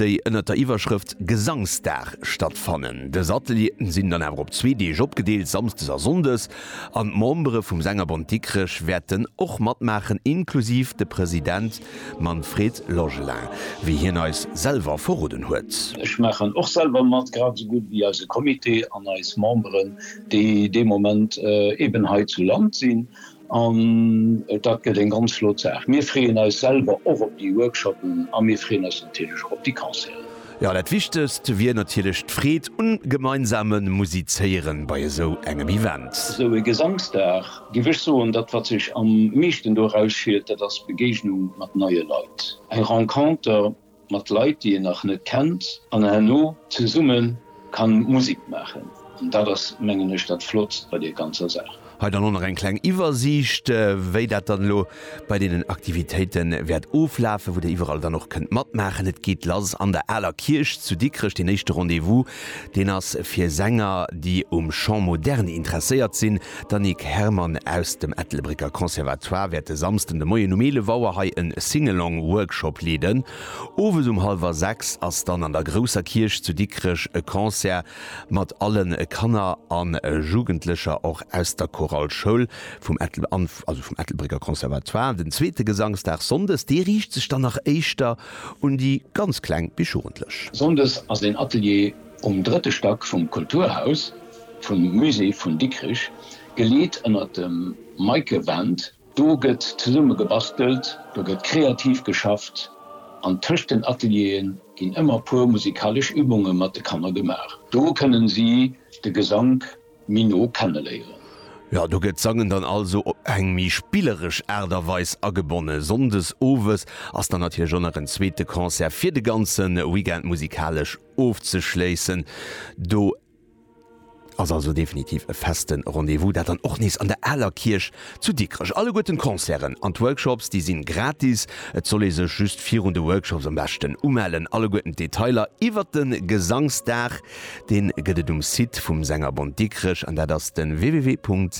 déi ënnert der Iwwerschrëft Gesangsdag stattfannen. Dës Atelieren sinn dann awer op zwee Deeg opgedeelt, Samsdes a Sonndes, an d'Membere vum Sängerbond Dikrech wäerten och matmaachen, inklusiv de President Manfred Logelin, wéi hien eis selwer verroden huet. Ech maachen och selwer mat, grad esou gutt wéi eise Comité an eis Memberen, déi dee Moment eeben hei zu Land sinn An dat gëtt eng ganz flott Saach. Mir freeën eis selwer och op déi Workshoppen a mir freeën eis natierlech och op déi Concerten. Jo, dat Wichtegst wier natierlech d'Freed um gemeinsame Musizéieren bei esou engem Event. Esou e Gesangsdag, géif ech soen, dat wat sech am meeschten do erausfiert, dat ass d'Begéignung mat neie Leit, eng Renconter, Mat Leit déi een nach net kennt an herno zesumme kann Musik maachen. An dat ass mengen ech dat Flott bei deer ganzer Saach. Hei dann och nach eng kleng Iwwersiicht wéi dat dann elo bei deenen Aktivitéite wäert oflafen, wou der iwwerall dann och kënnt matmaachen. Et geet lass an der Aler Kierch zu Dikrech, deen éischte Rendez-vous Deen ass fir Sänger, déi um Chant moderne interesséiert sinn. D'Annick Herrmann aus dem Ettelbrécker Conservatoire wäert e Samsden de Moien um 11 Auer hei e Sing-Along Workshop leeden. Owes um hallwer 6 ass dann an der Grousser Kierch zu Dikrech e Concert mat alle Kanner a Jugendlecher, och aus der Chorale Schoul vum Ettelbrécker Conservatoire. Den zweete Gesangsdag sonndes, dee riicht sech dann nach éischter Un déi ganz Kleng bis Jugendlech. Sonndes ass een Atelier um drëtte Stack vum Kulturhaus vum Musée vun Dikrich, geleet ënner dem Meike Wendt. Do gëtt zesumme gebastelt, do gëtt kreativ geschafft an tëscht den Ateliere ginn ëmmer puer musikalesch Übunge mat de Kanner gemaach. Do kënnen si de Gesank méi no kenneléieren. Jo, do gëtt d'Sangen dann also op eng méi spilleresch Aart a Weis agebonne. Sonndes owes ass dann natierlech och nach en zweete Concert fir de ganze Weekend musikalesch ofzeschléissen. Do ass also definitiv e feste Rendez-vous, dat dann och nees an der Aler Kierch zu Dikrech. Alleguerten d'Concerten an d'Workshops, déi sinn gratis. Et soll ee sech just virun de Workshops am beschten umellen. Alleguerten d'Detailer iwwert de Gesangsdag Deen gëtt et um Site vum Sängerbond Dikrech an dat ass den www.sbd.lu.